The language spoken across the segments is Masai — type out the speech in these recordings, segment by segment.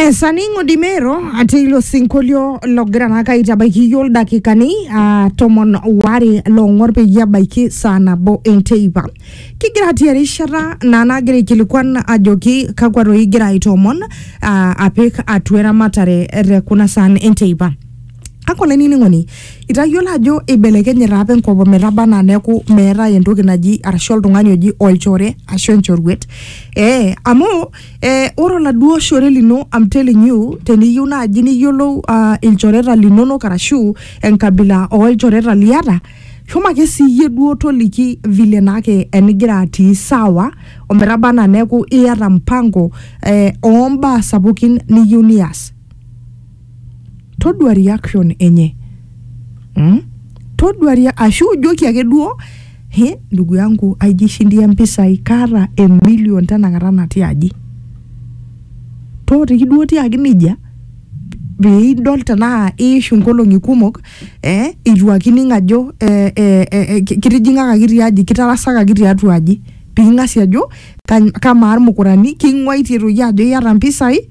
Yes, aning'o dimero ati ilo sinkolio logira naa kaitabaiki iyioo ildakikani ah, tomon waare loong'or peyie ebaiki saa nabo enteipa. Kigira atii erishata naa nagira aikilikuan ajoki kakwa toi igira aitoomon ah, apik atua eramatare te kuna saan enteipa. kake olainining'oni itayiolo ajo eibelekenye taa apa enkop ometaba anaa neeku meetae entoki naji arashu oltung'ani oji olchore ashu enchoruet ee amu ee, ore oladuo shore lino I'm telling you teniyieu naaji niyiolou uh, ilchoreta linonok arashu enkabila olchoreta liata shomo ake siiyie duo toliki vile naake enigira atii sawa ometaba anaa neeku iyata mpango eh, ombaa sapukin niyieu nias todua reaction enye mm? todua rea- ashu ijoki ake duo he ndugu yangu aijishindia mpisai kaata emilion tenakata natii aji tootiki duo tiaki nejia piidol tenaa iishu nkolong'i kumok eh, itu akining ajo eh, eh, eh, eh, ki- kitijing'akaki tiaji kitarasakaki tiatua aji piking'asi ajo kany- kamaa irmukurani king'uaitie toi ajo iyata mpisai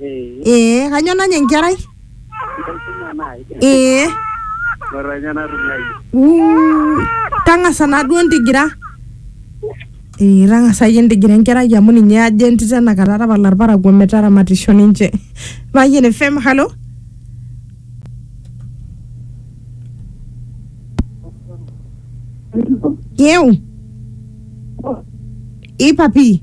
Eh, ee kanyo nanya enkerai enkisuma naai. ee Ore ninye natumiai. Uu, tang'asa naa duo ntigira ee tang'asa iyie ntigira enkerai amu ninye ajo entito enakata tapala irparakuo metaramatisho ninche payian fm halo yeu ipapi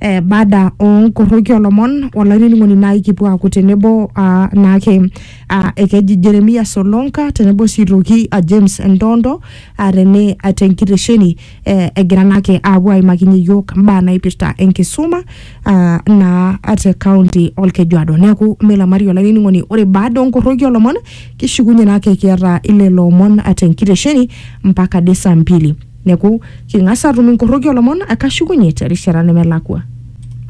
eh, baada onkoroki olomon olainining'oni naai kipuo aaku tenebo ah, naake ah, ekeji Jeremia Solonka tenebo sii toki ah, James Ndondo ah, tene ah, tenkitesheni eh, egira naake aapuo aimakinye iyiok mbaa naipirta enkisuma ah, naa ah, te kaunti olkejuado neeku milamari olainining'oni ore baada onkoroki olomon kishukunye naake kiata ilelo omon ah, tenkitesheni mpaka de saa mbili Neku, king'as atum inkorroki olomon kashukunye terishata nemelakua.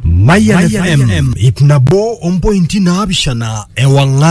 Mayian FM ip nabo ompointi naapishana ewang'an